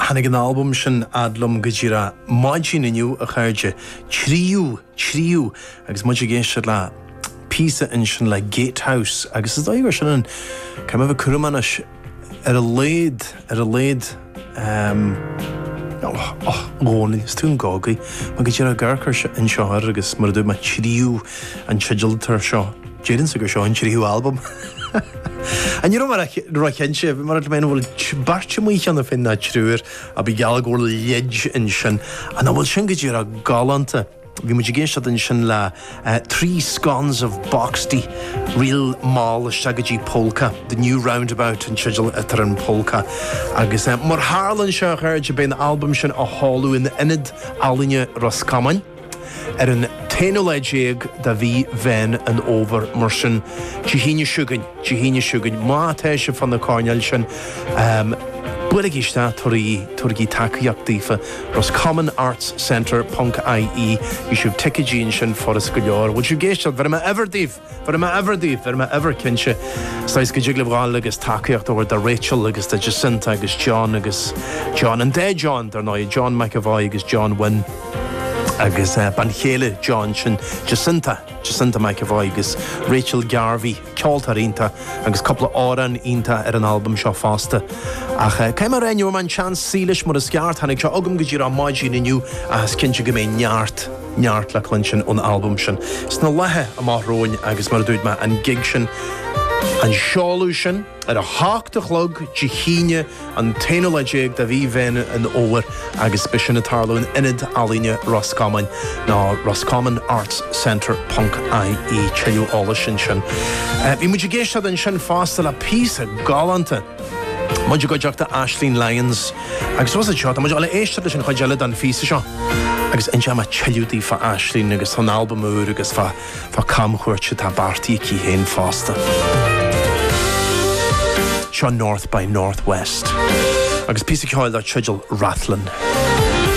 Tháinig an albam sin fhad liom go díreach maidin inniu, a chairde. Tríú, tríú, agus muid ag éisteacht le píosa ansin le Gatehouse, agus is dóigh gur sin an ceann a bheith cúram anois ar a laghad, ar a laghad. Och, och, Dhónaill, is tú an gágaí. Mé go díreach ag amharc air anseo thoir, agus mar a dúirt mé, tríú an teideal atá air seo. Deirimse gur seo an tríú albam. Ach ní raibh mé róchinnte, mar, an bhfuil beirt amuigh cheana féin, nó triúr, ach bíodh geall go bhfuil leid ansin. Nach bhfuil sin go díreach galánta? Bhí muid ag éisteacht ansin le Three Scones of Boxty, ríl mall isteach go dtí polka, The New Roundabout an teideal atá ar an polka, agus mar a tharlaíonn sé, a chairde, beidh an albam sin á sheoladh in Ionad Ealaíne Ros Comáin. Ar an t-aonú lá déag de mhí Mheán an Fhómhair, mar sin, Dé hAoine seo chugainn, Dé hAoine seo chugainn, má tá sibh fá na coirnéil sin, buailigí isteach tabharaigí tacaíocht daofa, Roscommon Arts Centre ponc IE, gheobhaidh sibh ticéidí ansin, furast go leor, bhfuil sibh ag éisteacht, bhéarfaidh mé uimhir daoibh! Bhéarfaidh mé uimhir daoibh, bhéarfaidh mé uimhir cinnte, sa chás go dtig libh a ghabháil agus tacaíocht a thabhairt do Rachel agus do Jacinta agus John agus John, an dá John, dar ndóigh, John McEvoy agus John Wynne agus bean chéile John, sin Jacinta, Jacinta McEvoy agus Rachel Garvey, ceoltóir iontach agus cúpla amhrán iontach ar an albam seo fosta. Ach cé nach bhfuair mé an tseans suí leis mar is ceart, tháinig sé chugam go díreach maidin inniu ach is cinnte go mbeidh neart. neart le cluinstin ón albam sin sna laethe amach romhainn agus mar a dúirt mé, an gig sin, an seoladh sin, ar a hocht a chlog Dé hAoine an t-aonú lá déag de mhí Mheán an Fhómhair agus beidh sin ag tarlú in Ionad Ealaíne Ros Comáin nó Roscommon Arts Centre ponc IE tuilleadh eolais ansin. Bhí muid ag éisteacht ansin fosta le píosa galánta. muid i gcuideachta Aisling Lyons agus anois seo, tá muid ag gabháil a éisteacht leis an chuid eile den phíosa seo agus inseoidh mé tuilleadh daoibh fá Aisling agus fán albam úr agus fá fá camchuairt atá beartaithe aici féin fosta. Seo North by Northwest agus píosa ceoil dar teideal Rathlin.